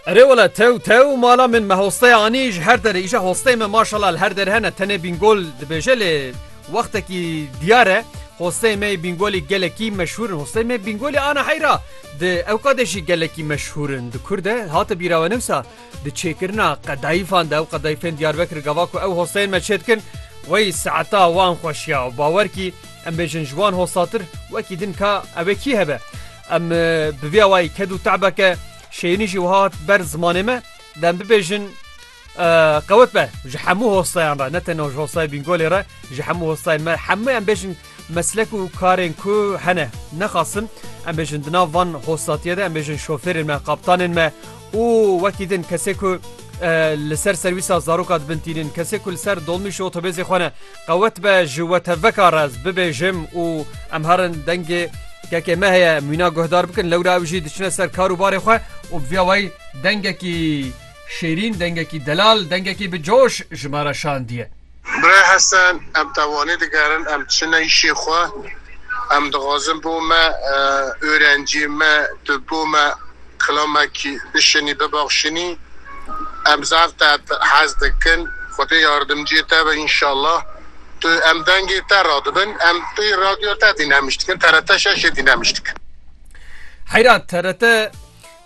Erê wele tew tew mala min me hosteya anî ji her derê îşe hosteyê me maşala li her derê hene tenê bîngol dibêje lê wextekî diyar e hosteyê me yê bîngolî gelekî meşhûr in hosteyê me bîngolî ana heyra di ewqadê jî gelekî meşhûr in di kur de hate bîra we newsa di çêkirina qedayîfan de ew qedayîfên diyarbekir gava ku ew hosteyên me çê dikin wey saeta wan xweşiya û bawer kî em bêjin ji wan hostatir wekî din ka ew ê kî hebe Em bi vî awayî ked û te'beke şêrîn jî wiha hat ber zimanê me, dem bibêjin qewet be ji hemû hostayan re ne tenê ji hostayê Bîngolê re ji hemû hostayên me hemû em bêjin meslek û karên ku hene nexasim em bêjin di nav van hostatiye de em bêjin şofêrên me qaptanên me û wekî din kesê ku li ser serwîsa zaroka dibin tînin kesê ku li ser dolmîş û otobêzê xwe ne Qewet be ji we tevveka rez bibêjim û em herin dengê kekê me heye mîna guhdar bikin lewra ew jî diçine ser kar û barê xwe û bi vîya wayî dengekî şêrîn, dengekî delal, dengekî bi coş ji me re şandiye. Birê Hesen, em tewanî digerin em diçine îşê xwe. Em dixwazin bo me, orencê me, tu bo me. Klamek bişinî bibexşînî em zaf te hez dikin xwedê yardimciyê te be înşallah tu em dengê te radibin em pê radyoya te dînhemiş dikin TRT şeşê dînhemiş dikin. Heyra TRT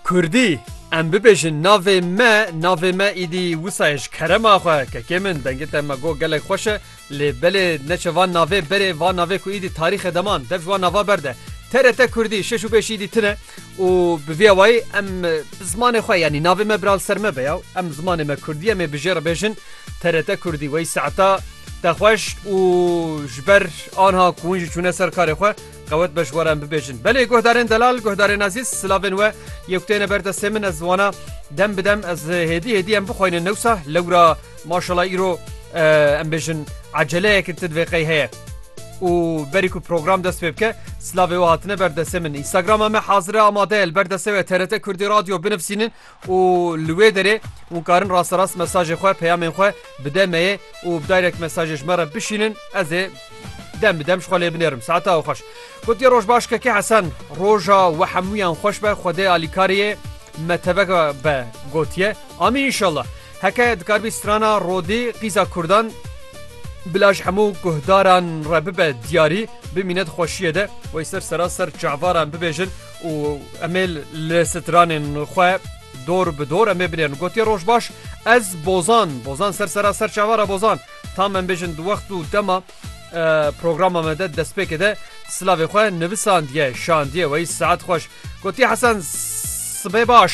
kurdî em bibêjin navê me navê me îdî wisa ye ji kerema xwe kekê min dengê te me got gelek xweş e Lê belê neçe van navê berê van navê ku îdî tarîxe deman dev ji wan nava berde. TRT Kurdî şeş û beş îdî tine û bi vîya wayî em bi zimanê xwe yanî navê me bira li ser me be ya em zimanê me Kurdî em ê bi jê re bêjin TRT Kurdî wey saeta te xweş û ji ber anha ku hûn jî çûne ser karê xwe qewet be ji we re em bibêjin. Belê guhdarên delal guhdarên ezîz silavên we yê ku têne ber destê min ez wana dem bi dem ez hêdî hêdî em bixweynin newsa lewra Maşala îro em bêjin eceleyeke ti divê qey heye. û berî ku program dest pê bike silavê we hatine ber desê min Instagrama me hazire amade el ber desê we TRT Kurdî radyo binivsînin û li wê derê hûn karin rasterast mesajê xwe peyamên xwe bi demeyê û bi direk mesajê ji me re bişînin ez ê dem bi dem ji xwe lê binêrim saeta ew xweş gotiye roj baş keke hesen roja we hemûyan xweş be xwedê alîkariyê me tevek be gotiye amî inşallah Heke dikarbî strana Rodî qîza kurdan bila ji hemû guhdaran re bibe diyarî bimîne di xweşiyê de wey ser sera ser çavaran bibêjin û emê li stranên xwe dor bi dor emê binêrin gotiye rojbaş ez bozan bozan ser sera ser çavara bozan tam em bêjin di wext û dema Programa me de destpêkê de silavê xwe nivisandiye şandiye wey saet xweş gotiye hesen sibê baş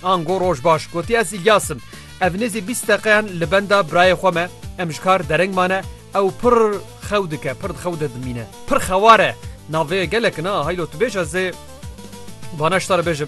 ango roj baş gotiye ez ilyasim ev nêzî bîst deqeyan li benda birayê xwe me em ji kar dereng mane ew pir xew dike pir xew de dimîne pir xeware navê gelek na haylo tu bêj ez ê bana ştar bêjim